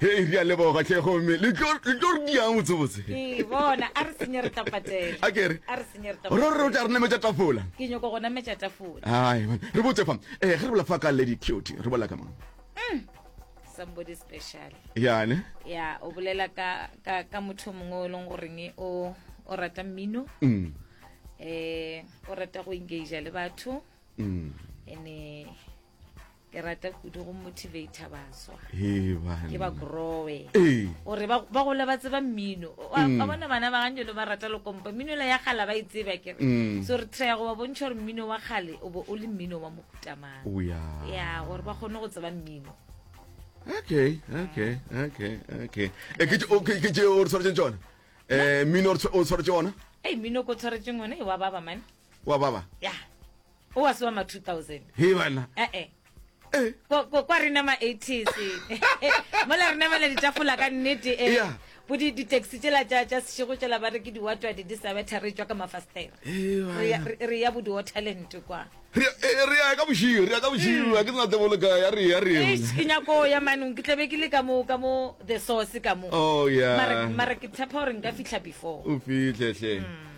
Hei, re a leboga, hle, gomme le tlo le tlo re diang botsebotse. Ke bona, a re senye re tla patela. A ke re? A re senye re tla Ro re o tla re nametša tafola. Ke nyoko go nametša tafola. Hai, man, re botse fa. Eh, ge re bola fa ka Lady Cutie, re bola ka mang? Somebody special. Yane. Ya, o bolela ka ka ka motho o mongwe o e leng goreng o o rata mmino. Mm. Eh, o rata go engage le batho. Mm. Ene ke rata kudu go motivator baswa Hee, bana. ke ba growe Ee. gore ba ba gole ba tseba mmino O a- a bona bana ba ganjelo ba rata lokompa mmino la ya gala ba e tseba ke re Mm. so re try go ba bontšha gore mmino wa gale o bo o le mmino wa mohutamang o ya ya gore ba kgone go tseba mmino okay okay okay okay Eh, ke tše- o- ke ke tše o re tshwaretseng tsona um mmino o re tshwa- o tshwaretse ona ei mmino ko tshwaretseng one e wa baba mane wa baba ya o wa se wa ma 2000 he bana ee eh. ko ko kwa rena ma 80s mola rena mala ditafola ka nnete e yeah. bo di di taxi tsela tsa tsa sego tsela ba re ke di watwa di di sa betha re tswa ka mafastera re ya bo di talent kwa re re ya ka boshiyo re ya ka boshiyo mm. ke tsena tebolo ka ya re ya re e ke nyako ya manong ke tlebe ke le ka mo ka mo the source ka mo oh yeah mara mara ke tshepa hore nka fihla before o fihle hle mm.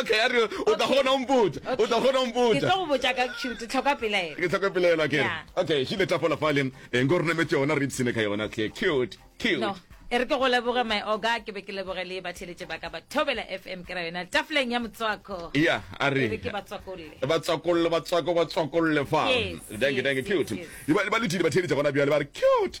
okay a re o tla gona mpotsa o tla gona mpotsa ke tlo go botsa ka cute tlhoka pelaelo ke tlhoka pelaelo ke okay she le tla fola fale eng go rena metse yona re tsine ka yona ke cute cute no e re ke go leboge my oga ke be ke leboge le batheletše ba ka ba thobela fm ke ra yona tafoleng ya motswako ya a re ke batswakolle batswakolle batswako batswakolle fa danke danke cute ba letile batheletše gona bjale ba re cute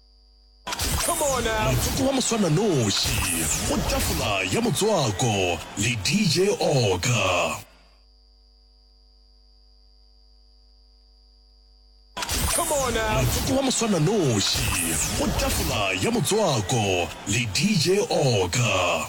Motsotso wa moswananoši go tafola ya motswako le DJ Oka. Motsotso wa moswananoši go tafola ya motswako le DJ Oka.